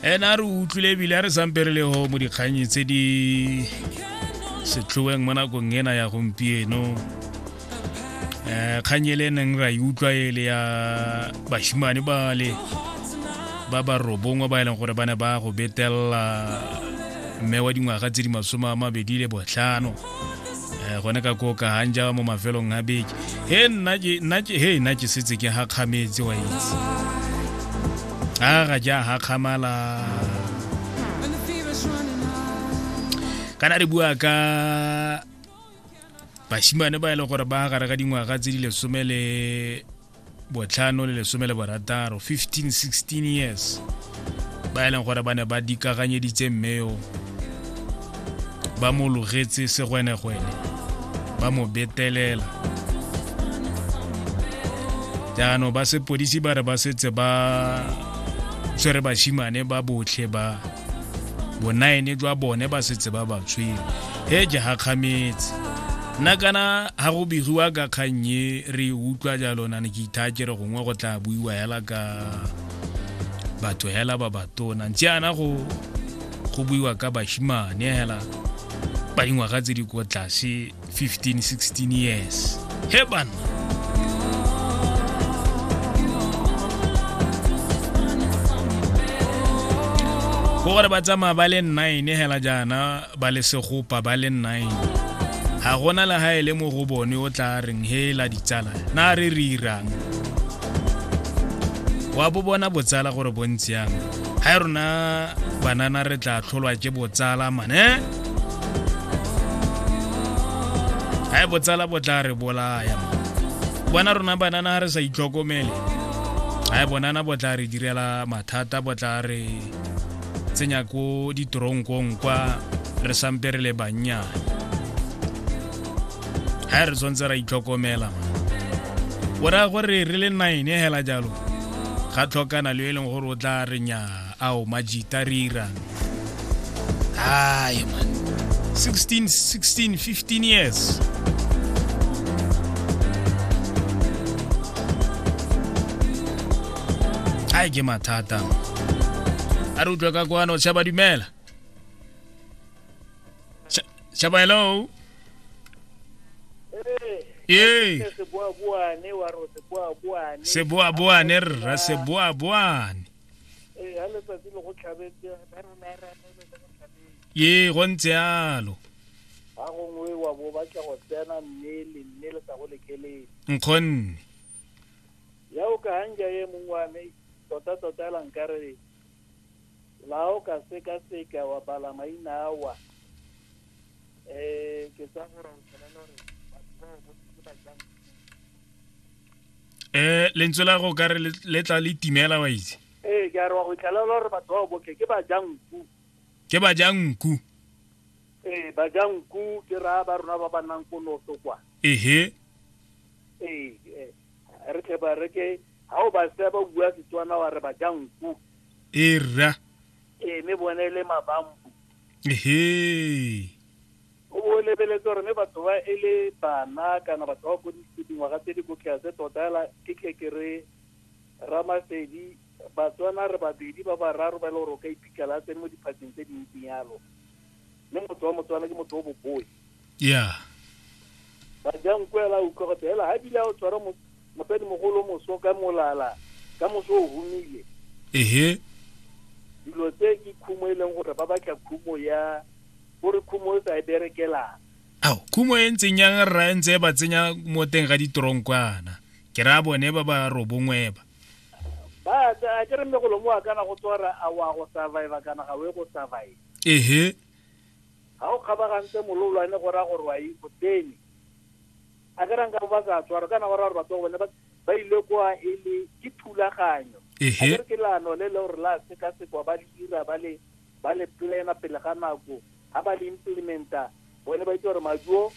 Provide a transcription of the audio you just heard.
ene a re utlwile ebile a re sampe re le ho mo dikganyi tse di setlhoeng mo nakong ena ya gompieno um kgang e le neng ra e utlwa e le ya bashimane bale ba ba robongwe ba e leng gore ba ne ba go betelela mme wa dingwaga tse di masome a mabedi le botlhano eh, gone ka koka hanja mo mafelong a beke he nna ke nna ke he nna ke setse ke ha khametse wa itse a ga ja ha khamala kana re bua ka bashimane ba e leng gore ba gare ga dingwaga tse di lesome le botlhano le lesome le borataro 15-16 years ba e leng gore ba ne ba dikaganyeditse mmeo ba mo logetse segwenegwene ba mo betelela jaanong ba sepodisi ba re ba setse ba tshwere bashimane ba botlhe ba bonaene jwa bone ba setse ba ba tshwere he ke gakgametse nna kana ga go begiwa ka kgannye re utlwa jalo na ne ke ithaa ke re gongwe go tla buiwa hela ka batho hela ba batona ntse ana go go buiwa ka bashimane hela ba dingwaga tse di ko tlase 15 16 years he bana go gore ba tsamaya ba le nine hela jaana ba le segopa ba le nine ga gona le ga e le mo go bone o tla reng hela ditsala na re re irang wa bo bona botsala gore bontsiyang ga e rona banana re tla tlholwa ke botsala mane ga e botsala bo tla re bolaya bona rona banana ga re sa itlhokomele ga e bonana bo tla re direla mathata bo tla re tsenya ko ditoronkong kwa re sampe re le bannyane ga re tshwanetse ra itlhokomela o raya gore re le nine hela jalo ga tlhokana le e leng gore o tla re nyaa Ao majita rira. Hayi man. 16 16 15 years. Hayi ke mathata. A re utlwe ka kwano tshaba dumela. Tsha- Tshaba hello. Ee. seboaboane wa ro seboaboane Seboaboane rra seboaboane. ee ha letsatsi le go tlhabetse ba rona re anele le go tlhabetse ee go ntse yalo ga gongwe wa bo batla go tsena mme le mme le sa go lekelele nkgonne ya o ka hanja ye mongwe wa me tota tota la nkare la o ka seka seka wa bala maina awa um ke tsa gore o tshwanela gore batho ba o botse ba jang um lentswe la go kare le tla le timela wa itse ee ke a re wa go itlalela gore batho ba boke ke bajanku ke bajanku ee bajanku ke raya ba rona ba ba nnang ko noto kwa ehe ee eh, re tle ba re ke ga o ba se ba bua setswana wa re bajanku ee rra ee mme bone e le mabambu ehe O bo o lebeletse gore mme batho ba e le bana kana batho ba ko dingwaga tse di ko tlase tota fela ke tle ke re Ramasedi Batswana re babedi ba bararo ba e le gore o ka iphitlhela a tsene mo diphatseng tse dintsi yalo mme motho wa Motswana ke motho o boboi yeah Bajanko ela a utlwa gote ela ha bile a o tshwara mosadi mogolo moso ka molala ka moso o humile ehe dilo tse ke khumo e leng gore ba batla khumo ya O re khumo e sa e berekelang. Ao, khumo e ntseng yang rra e ntse e ba tsenya mo teng ga ditoronkwana. Ke ra bone ba ba robongweba. Ba tsa a ke re mme golomo wa kana go tswara a wa go survive kana ga we go survive. Ehe. Ha o kgabagantse mololwane go ra gore wa e go tsene. A ke ra nka ba sa tswara kana go ra gore batho ba bone ba ba ile kwa e le ke thulaganyo. Ehe. A ke re ke lano le le gore la seka sekwa ba le dira ba le ba le plan-a pele ga nako ga ba le implementa bone ba itse gore maduo